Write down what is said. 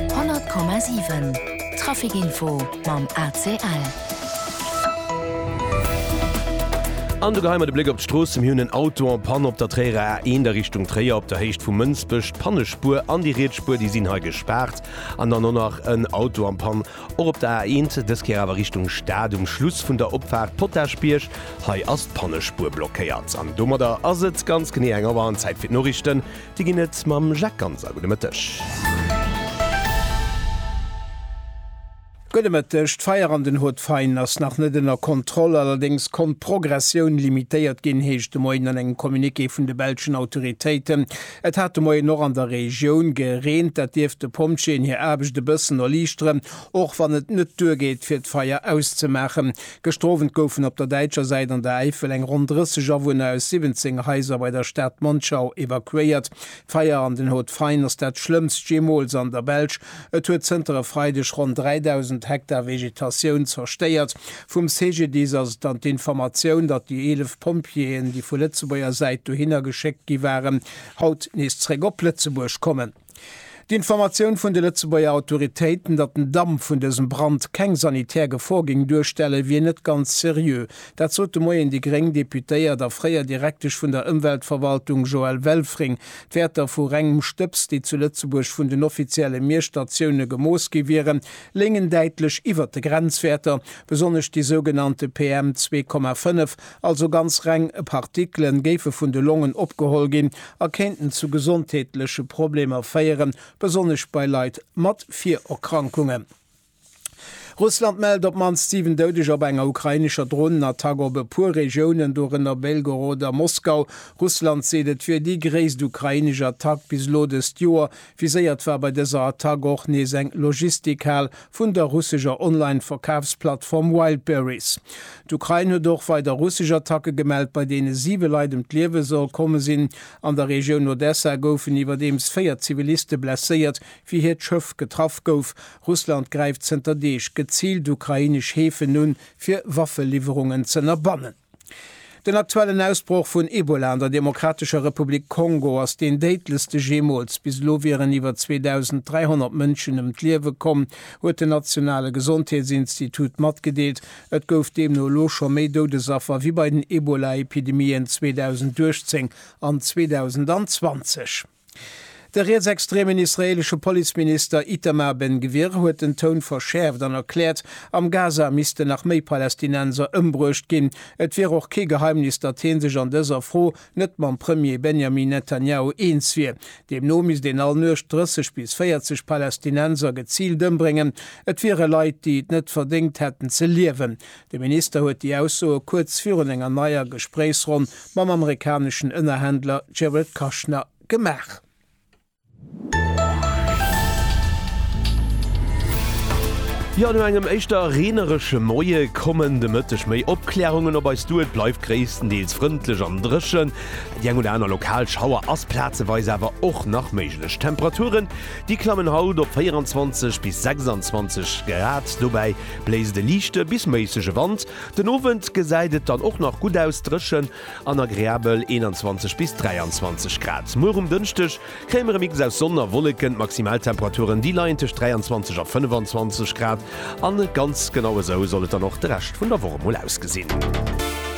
100,7 Trafic Info mam ACL. An do geheien mer de Bléck op d'Strooss. Mir hunn en Auto en panne op der Tréierer A1 a Richtung Tréier op der Héicht vu Mënsbech. D'Pannespuer an déi riets Spuer, déi sinn hei gespaart. An dann och nach en Auto am Pann och op der A1, dës Kéier awer Richtung Stad um Schluss vun der Opfaart Potaschbierg. Hei ass d'Pannespuer blockéiert. An domadder ass et ganz genee eng Auer an Zäit fir d'Noriichten. Dir ginn et mam Jacques Ganser. Gudde Mëtteg. Gudde Mëtteg. D'Feier an den Haut-de-Faine ass nach net ënner Kontroll. Allerdéngs konnt d'Progressioun limitéiert ginn, heescht de Moien an engem Communiqué vun de belschen Autoritéiten. Et hat de Moien och an der Regioun gereent. Dat dierft de Pompjeeën hir Aarbecht e bëssen erliichteren, och wann et net duergeet, fir d'Feier auszemaachen. Gestrowent goufen op der däitscher Säit an der Äifel eng ronn 30 Awunner aus 17 Haiser bei der Stad Monschau evakuéiert. D'Feier an den Hauts-de-Faine ass dat schlëmmst jeemools an der Belsch. Et huet zënter e Freideg ronn 3.000 Hektar Vegetatioun zerstéiert. Vum CGDIS ass et dann d'Informatioun, datt déi 11 Pompjeeën, déi vu Lëtzebuerger Säit dohinner geschéckt gi waren, haut nees zeréck op Lëtzebuerg kommen. D'Informatioun vun de Lëtzebuerger Autoritéiten, datt den Damp vun dësem Brand keng sanitär Gefor géing duerstellen, wier net ganz seriö. Dat sot de Moien déi gréng Deputéiert a fréier Direktesch vun der Ëmweltverwaltung Joëlle Welfring. D'Wäerter vu rengem Stëbs, déi zu Lëtzebuerg vun den offizielle Miesstatioune gemooss gi wieren, léngen däitlech iwwer de Grenzwäerter, besonnesch déi sougenannte PM 2,5. Also ganz reng Partikele géife vun de Longen opgeholl ginn a kéinten zu gesondheetleche Problemer féieren, besonnesch bei Leit mat Virerkrankungen. Russland mellt op d'mannst 7 Doudeger bei enger ukrainescher Dronenattack op e puer Regiounen, dorënner Belgorod a Moskau. Russland seet, et wier déi gréisst ukrainesch Attack bis elo dëst Joer, Viséiert war bei dëser Attack och nees eng Logistikhal vun der russescher Online-Verkafsplattform Wildberries. D'Ukrain huet och weider russesch Attacke gemellt, bei deene siwe Leit ëm d'Liewe soll komme sinn. An der Regioun Odessa goufen iwwerdeems véier Ziviliste blesséiert, wéi hiert Schëff getraff gouf. Russland gräift zënter Deeg geziilt ukrainesch Häfen un, fir Waffeliwwerungen z'ënnerbannen. Den aktuellen Ausbroch vun Ebola an der Demokratescher Republik Kongo ass deen déidlechste jeemools. Bis elo wieren iwwer 2.300 Mënschen ëm d'Liewe komm, huet den nationale Gesondheetsinstitut matgedeelt. Et gouf deemno elo scho méi Doudesaffer wéi bei den Ebola-Epidemien 2018 an 2020. De rietsextremen israeelesche Policeminister Itamar Ben-Gvir huet den Toun verschäerft an erkläert, am Gaza missten nach méi Palästinenser ëmbruecht ginn. Et wier och kee Geheimnis, datt hie sech an dëser Fro net mam Premier Benjamin Netanjahu eens wier. Deemno misst een all Nuecht 30 bis 40 Palästinenser geziilt ëmbréngen. Et wiere Leit, déi et net verdéngt hätten ze liewen, De Minister huet déi Aussoe kuerz virun enger neier Gespréichsronn mam amerikaneschen Ënnerhändler Jared Kushner gemaach. Jo, no engem éischter reeneresche Moie kommen de Mëtteg méi Opklärungen op eis duer. Et bleift gréisstendeels frëndlech an dréchen, déi eng oder aner lokal Schauer ass plazeweis awer och nach méiglech. D'Temperaturen, déi klammen haut op 24 bis 26 Grad, dobäi Bléist e liichte bis méissege Wand. Den Owend gesäit et dann och nach gutt aus, dréchen an agreabel 21 bis 23 Grad. Muer um Dënschdeg kréie mer e Mix aus Sonn a Wolleken. D'Maximaltemperaturen, déi leien tëscht 23 a 25 Grad, a ganz genau esou soll et dann och de Rescht vun der Woch emol ausgesinn.